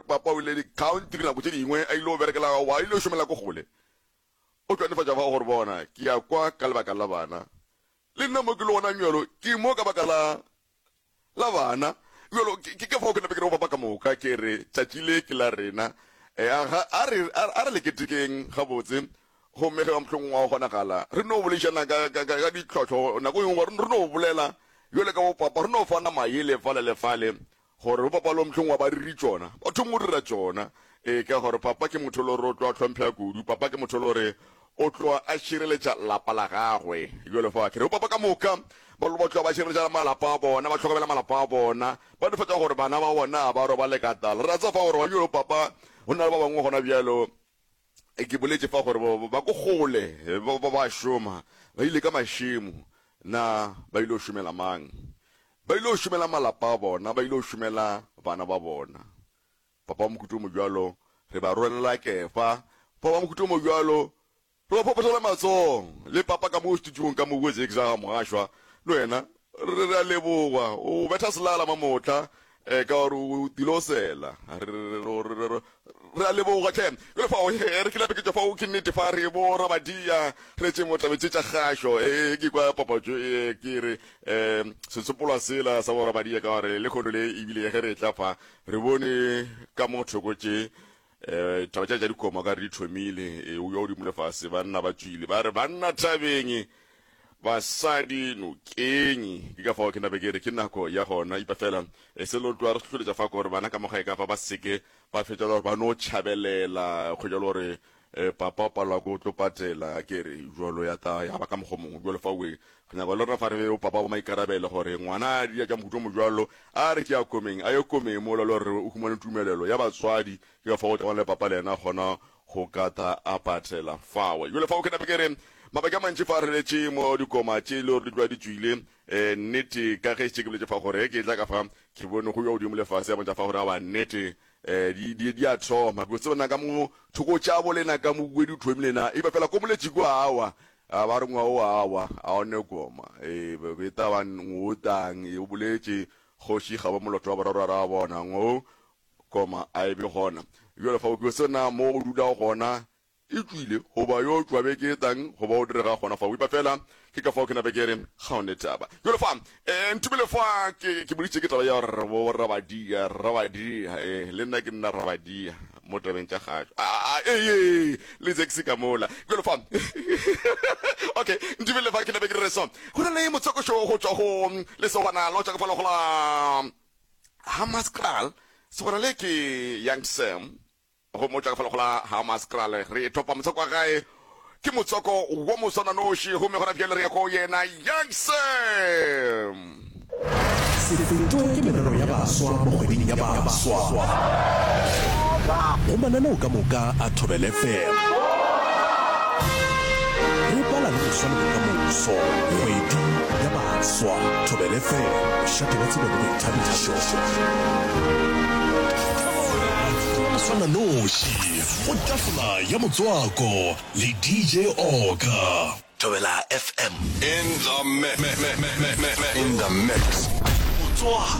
Papa o ile dikhaontiri nako tše dingwe a il'o berekela gago, a il'o šomela ko kgole. O tšwa nefatša fa o re bona, ke ya kwa ka lebaka la bana. Le nna mo ke lego gonang bjalo, ke mo ka baka la, la bana. Bjalo, ke, ke ka fao ke nape ke re go Papa ka moka, ke re, Tšatši le ke la rena. E, a, ga, a re, a, a re le ketekeng gabotse. Gomme ge mohlomongwe gwa kgonagala, re no boledišana ka, ka, ka, ka ditlhohlo nako e nngwe, re, re no bolela bjalo ka bo Papa, re no fana mayele fale le fale. Gore o bapalwa mohlong wa bariri tšona, ba thoma go dira tšona. Ee, ka gore papa ke motho lo re o tlo a hlomphega kudu. Papa ke motho lo re o tlo a šireletša lapa la gagwe. Bjale fa ke re bopapa ka moka, ba lo ba tlo ba šireletša malapa a bona, ba hlokomela malapa a bona, ba nefatša gore bana ba bona ga ba robale ka tala. Re a tseba fa gore gona bjale papa go na le ba bangwe gona bjalo Ke boletše fa gore ba ko kgole ba ba šoma, ba ile ka mašemo. Na ba ile go šomela mang? Ba ile go šomela malapa a bona, ba ile go šomela bana ba bona. Papa wa mohuta o mo bjalo re ba rwanela kefa. Papa wa mohuta o mo bjalo re ba phophotola matsogo. Le papa ka mo studiong ka mo, Wozek Zaga Mogashoa, le wena Re re a leboga, o betha selala mamotla ka gore o tile o sela. Re a leboga hle. Jwale fao re ke lapeketša fao ke nnete fa re bo rabadia re tše mo tabe tše tša kgašo. He ke kwa papatšo e ke re setsopolwa sela sa bo rabadia ka gore le kgono le ebile ge re etla fa re bone ka mo thoko tše E, taba tša tša dikoma ka re di thomile e, o yo di mole fase banna ba tšwile ba re banna thabeng basadi nokeng ke ka fao ke nabe ke re ke nako ya gona ipa fela e se lo tloa re hloletša fa gore bana ka moga e ka fa ba seke ba fetša gore ba no tšhabelela go jalo gore e, papa o palelwa ko tlo patela ke re jalo ya ta ya ba ka mokgo mongwe jalo fa o Re nyaka le rena fa re be bopa ba bomaikarabelo gore ngwana a dira tša mohuta o mojwalo a re tšea komeng, a ye komeng mola le gore o humane tumelelo ya batswadi. Ke ka fao gotagwa le papa le yena a kgona go ka tla a patela fao. Bjale fao ke nape ke re, mabaka a mantši fa re letše mo dikoma tše e le gore di tloga di tšwile, ee, nnete, ka ge šetše ke boletše fa gore ge ke etla ka fa, ke bone go yo wa godimo le fase a bontšha fa gore awa nnete, Di, di, di a thoma, ko tsebana ka mo thoko tša bo lena ka mobuedi o thomile na, iba fela ko moletši ko awa, a ba re ngwa o awa, a o ne koma, e, beta ba ngotang, e, o boletše, kgoši ga ba moloto wa boraro ra bona, ngo, koma, a e be gona. Bjale fa o ke o tsebana mo o dulago gona, E tšwile go ba yo tšwa be ke tang go ba o direga gona fa, wipa fela. Ke ka fao ke nape ke re, Ga one taba. Bjalo fa, ee, nthibele fa ke, ke boditše ke taba ya gore bo, bo Rabadia, Rabadia, ee, le nna ke nna Rabadia, mo tabeng tša gašo. A, a, ee, le Zexi ka mola. Bjalo fa, okay, nthibele fa ke nape ke dire so. Go na le motsokošo go tšwa go lesogwana la go tšwa ka falo go la Hammarskraal, segwana le ke Young Sam, Go mo tšwa ka fa lego la Hammaskral, re thopa motswako wa gae. Ke motswako wo moswananoši gomme gona bjale re ya go yena. Youngsom! Se fetwe ke merero ya baswa mo kgweding ya baswa go mananeo ka moka a Thobel FM. Re bala le go swa le bokamoso. Kgwedi ya baswa, Thobel FM, bošate bwa tsebo le boithabišo. Go swana noši go tafola ya motswako le DJ Oka. Thobela FM. In the mix. Motswako.